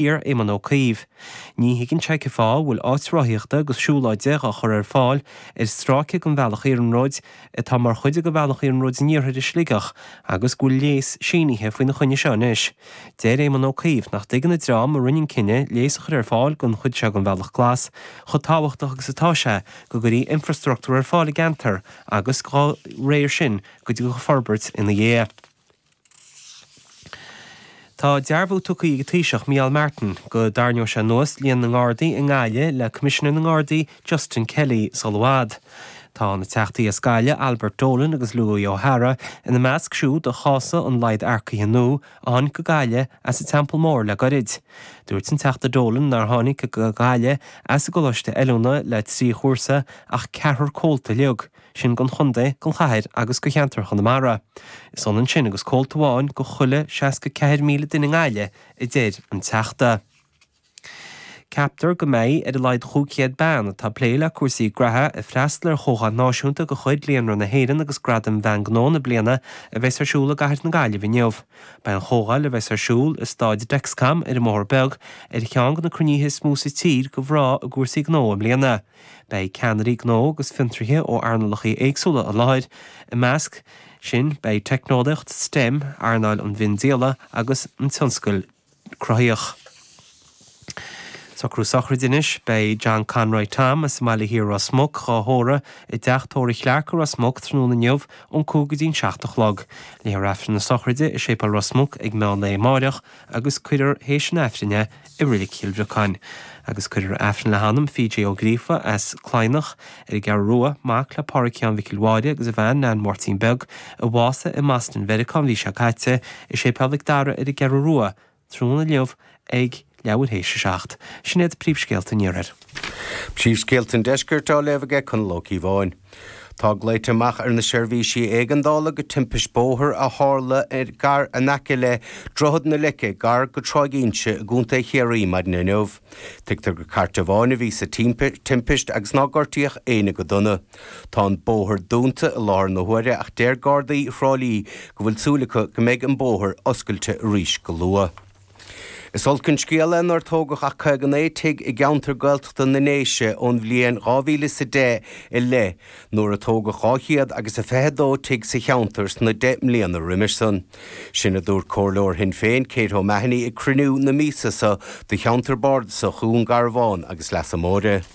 Iarr Éamon Ó Cuív. Ní thuigeann sé cén fáth a bhfuil áit rothaíochta agus siúlóide á chur ar fáil ar stráice den bhealach iarnróid atá mar chuid de Bhealach Iarnróid an Iarthair i Sligeach agus go bhfuil léas sínithe faoina choinne seo anois. Deir Éamon Ó Cuív nach dtuigeann an dream a rinne an cinneadh léas a chur ar fáil don chuid seo den Bhealach Glas chomh tábhachtach agus atá sé go gcuirfí infrastruchtúr ar fáil i gceantar agus dá réir sin go dtiocfadh forbairt ina dhiaidh. Tá dearbhú tugtha ag an Taoiseach Micheál Martin go dtarraingeoidh sé anuas líon na nGardaí i nGaillimh le Coimisinéir na nGardaí Justin Kelly sul i bhfad. Tá na Teachtaí as Gaillimh Albert Dolan agus Louis O'Hara ina measc siúd a chásadh an laghad earcaithe nua a tháinig go Gaillimh as an Teampall Mór le goirid. Dúirt an Teachta Dolan nár tháinig go Gaillimh as an gcoláiste oiliúna le trí chúrsa ach ceathrar comhalta uilig sin don Chontae, don Chathair agus do Cheantar Chonamara. Is ionann sin agus comhalta amháin do chuile 64,000 duine i nGaillimh, a deir an Teachta. Ceaptar go mbeidh ar a laghad 500 bean, atá ag plé le cúrsaí graithe, ag freastal ar chomhdháil náisiúnta de chuid Líonra na hÉireann agus Gradaim Bhean Gnó na Bliana a bheas ar siúl i gCathair na Gaillimhe inniu. Beidh an chomhdháil, a bheas ar siúl i Stáid Dexcom ar an mBóthar Beag, ar cheann de na cruinnithe is mó sa tír do mhná i gcúrsaí gnó i mbliana. Beidh ceannairí gnó agus fiontraithe ó earnálacha éagsúla i láthair, i measc sin beidh teicneolaíocht STEM, earnáil an mhiondíola agus an tionscal cruthaitheach. Socrú Sochraide Anois Beidh John Conroy Tom as an mBaile Thiar Ros Muc dhá thórramh i dTeach Tórraimh Chlarke i Ros Muc tráthnóna inniu ón 5 go dtí'n 7 a chlog. Léifear Aifreann na Sochraide i Séipéal Ros Muc ag meán lae amáireach, agus cuirfear théis an Aifrinn é i Reilig Chill Bhriocáin, agus cuirfear Aifreann le hanam P.J. Ó Gríofa as Cladhnach ar an gCeathrú Rua, mac le Pádraig Sheáin Mhicil Mháire agus a bhean Neain Mháirtín Beag, a bhásaigh i mBoston Mheiriceá an mhí seo caite, i Séipéal Mhic Dara ar an gCeathrú Rua, tráthnóna inniu ag leathuair théis a seacht. Sin iad príomhscéalta an Iarthair. Príomhscéalta an Deiscirt á léamh ag Conall Ó Cíobháin. Tá glaoite amach ar na seirbhísí éigeandála go timpist bóthair a tharla gar in aice le Droichead na Leice gar go Tráigh Inse i gContae Chiarraí maidin inniu. Tuigtear gur cairt amháin a bhí sa timpist agus ná gortaíodh éinne go dona. Tá an bóthar dúnta i láthair na huaire ach deir Gardaí Thrá Lí go bhfuil súil acu go mbeidh an bóthar oscailte arís go luath. Is olc an scéal é nár tógadh ach 59 tigh i gceantar Gaeltachta na nDéise ón bhliain dhá mhíle is a deich i leith nuair a tógadh dhá chéad agus a fiche a dó tigh sa cheantar sna deich mbliana roimis san. Sin a dúirt Comhairleoir Shinn Féin, Kate O'Mahoney ag cruinniú na míosa so do cheantar Bardasach Dhún Garbhán agus Leasa Móire.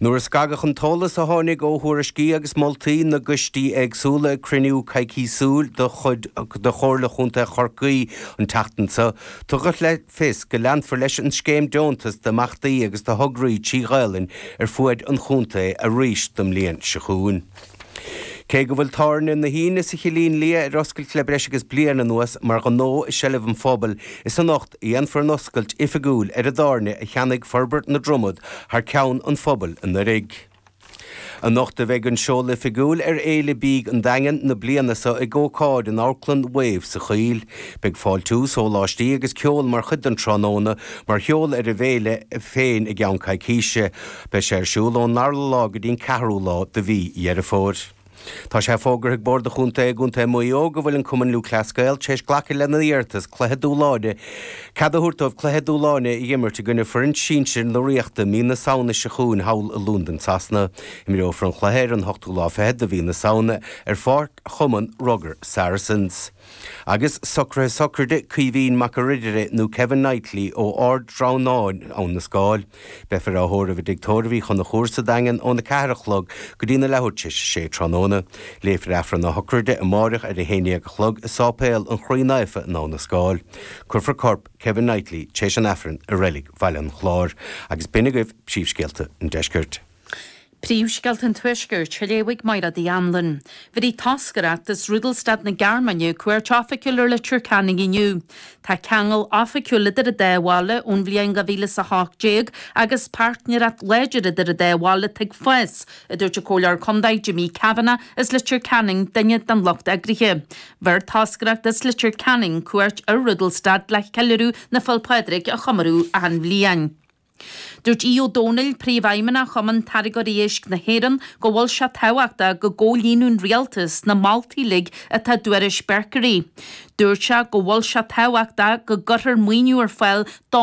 Nuair a scagadh an t-eolas a tháinig ó thuairiscí agus moltaí na gcoistí éagsúla ag cruinniú coicísiúil de chuid Chomhairle Chontae Chorcaí an tseachtain seo, tugadh le fios go leanfar leis an scéim deontas d'imeachtaí agus do thograí trí Ghaelainn ar fuaid an chontae arís don mbliain seo chugainn. Cé go bhfuil tábhairne na hUíne sa Chillín Liath ar oscailt le breis agus bliain anuas mar ghnó i seilbh an phobail, is anocht a dhéanfar an oscailt oifigiúil ar an dtábhairne a cheannaigh Forbairt na Dromoda thar ceann an phobail anuraidh. Anocht a bheidh an seoladh oifigiúil ar Fhéile Bídh an Daingin na bliana seo ag ócáid in Amharclann Wave sa Choill. Beidh fáiltiú, sóláistí agus ceol mar chuid den tráthnóna, mar sheoladh ar an bhféile féin i gceann coicíse. Beidh sé ar siúl ón dara lá go dtí an ceathrú lá de mhí Dheireadh Fómhair. Tá sé fógartha ag Bord an Chontae i gContae Mhaigh Eo go bhfuil an Cumann Lúthchleas Gael tar éis glacadh lena n-iarratas cluiche dúshláin cead a thabhairt dóibh cluiche dúshláin a imirt i gcoinne foireann sinsir na Ríochta mí na Samhna seo chugainn thall i Londain Shasana. Imreofar an chluiche ar an ochtú lá fichead de mhí na Samhna ar Pháirc Chumann Rugair Saracens. Agus socruithe sochraide Caoimhín Mac a' Ridire nó Kevin Knightley ó Ard Draighneáin, Abha na Scáil. Beifear á thórramh i dTigh Tórraimh Uí Chonchúir sa Daingean óna ceathair a chlog go dtí na leathuair t'éis a sé tráthnóna. Léifear Aifreann a shochraide amáireach ar a haon dhéag a chlog i Sáipéal an Chroí Naofa in Abha na Scáil. Cuirfear corp Kevin Knightley t'éis an Aifrinn i reilig Bhaile an Chláir. Agus b'in agaibh príomhscéalta an Deiscirt. Príomhscéalta an Tuaiscirt á léamh ag Mairéad Hanlon. Bhéarfaidh toscaireacht as Rudolstadt na Gearmáine, cuairt oifigiúil ar Leitir Ceanainn inniu. Tá ceangal oifigiúil idir an dá bhaile ón bhliain 2018 agus páirtnéireacht láidir idir an dá bhaile atá ag fás, a dúirt an Comhairleoir Contae Jimmy Kavanagh as Leitir Ceanainn, duine den lucht eagraithe. Bheir toscaireacht as Leitir Ceanainn cuairt ar Rudolstadt le ceiliúradh na Féile Pádraig a chomóradh achan bhliain. Dúirt Aodh Ó Domhnaill, Príomhfheidhmeannach Chumann Táirgeoirí Éisc na hÉireann, go bhfuil sé tábhachtach go gcomhlíonann an Rialtas na moltaí uilig atá i dtuairisc Berkery. Dúirt sé go bhfuil sé tábhachtach go gcuirtear maoiniú ar fáil don.